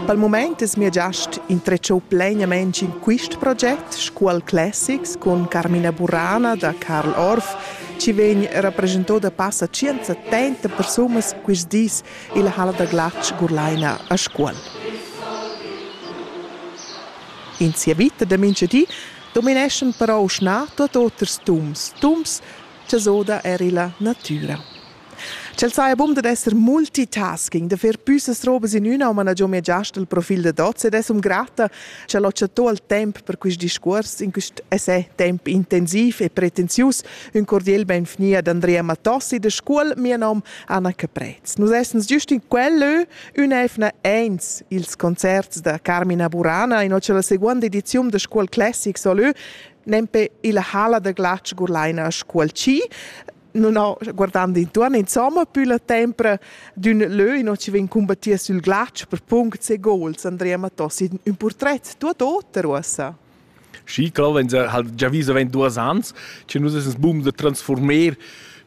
Dal mumaint es mia giast intretschou plainamaing in quist proget Scuol Classics cun Carmina Burana da Carl Orff, chi vegn rapreschanto da passa tschienza tenta persunas quist dis illa halla da glatsch Gurlaina a Scuol. In sia vita da mincha di domineschan però schna tuot oters tums, tums cha s'oda eir illa natüra. Ch'el saja bun dad esser multitasking, da fer püssas robas in üna, ma na giò mia giast il profil da Dots ed es um grata ch'el ho chattò il temp per quist discuors in quist essai temp intensiv e pretensius. Ün cordiel benvgni ad Andrea Matossi da Scuol, mia nom Anna Caprez. Nus essens giust in quel lö ün'eivna eins ils concerts da Carmina Burana in ho la seguonda ediziun da Scuol Classic solö nempe illa Hala da Glatsch Gurlaina a Scuol Ci. non ho guardand intuorn insomma più la tempra d'ün lö in ci vegn combattir sül glatsch per punct e gols Andrea Mattos in ün portret tuot oter uossa Schi, claro, wenn sie halt già viso wenn duas ans, che nus essens bum de transformer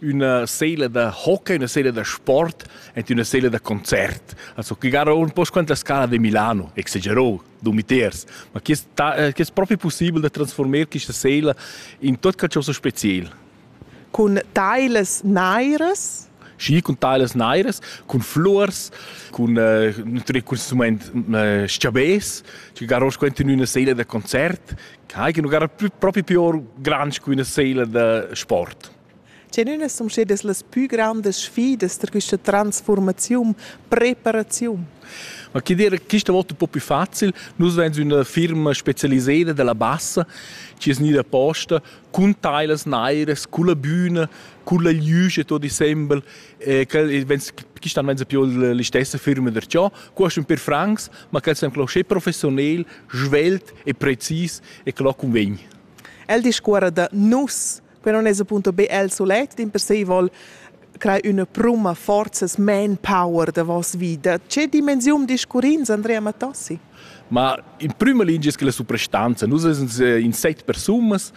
una seele da hockey, una seele da sport en una seele da concert. Also che gara un po' quanta scala di Milano, exagerò, du meters, ma che è eh, proprio possibile da trasformare questa seele in tot che è so special? cun tailas nairas schi cun tailas nairas, cun flurs, cun äh, natürlich consumand äh, schiabes, che garos quent in üna seila da concert, che non gara proprio più grande che una seila da sport. Tgenüna sun stedas las pü grandas sfidas da questa transformaziun, preparaziun? Ma che dire, questa volta un po' più facile. Noi siamo una firma specializzata della bassa, che è gnida posta cun tailas nairas, culla büna, culla glüsch e tot insembel, e quel vens quistan venza più l'istessa firma der ciò, quest ün per francs, ma quel sem clo sche professionel, svelt e precis e clo convegn. El discuora da nus, que non es appunto be el solet, in per se vol crei üna pruma forza, manpower da vos vita. Che dimensium discurrins, Andrea Mattossi? Ma in prüma lingia es que la suprastanza. Nus esens in set persunas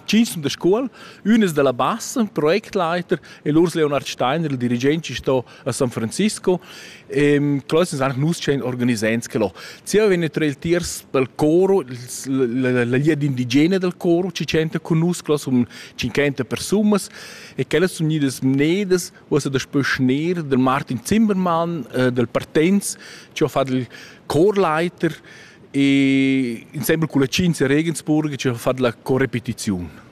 Cinc sun da scuol, ün es da la bassa, projektleiter, e l'Urs Leonard Steiner, il dirigent, chi sto a San Francisco. Ehm, que es anche nus tschient organisants che l'ho. Zieva vegn trei il tiers pel coro, la la lia d'indigena dal coro, chi tschenta cun nus, que sun 50 persunas, e quellas sun gnidas mnedas ussa daspö schner del Martin Zimmermann, äh, del Partenz, che ho fat il Chorleiter e insembel culla Cinzia Regensburg che ho fat la corepetiziun.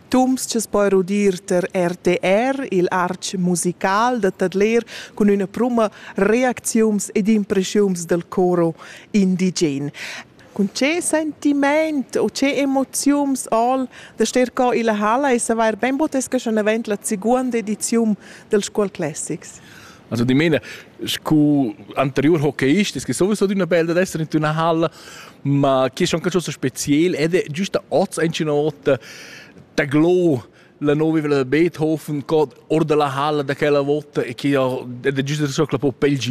Tums che poi rudir ter RTR, il arch musical da Tadler, cun üna pruma reacziums ed impreschiums del coro indigen. Cun che sentiment u che emoziuns all da ster co illa halla e savair bain botesca schon avant la seguonda ediziun dels Scuol Classics. Also die meine, scu anterior hockeyist, es que sowieso d'una bella d'esser in una halla, ma chi è schon qualcosa spezial ed è giusta oz ein una volta da glo la nuova villa da Beethoven co or dalla halla da quella volta e che ed è giusta so che la po pel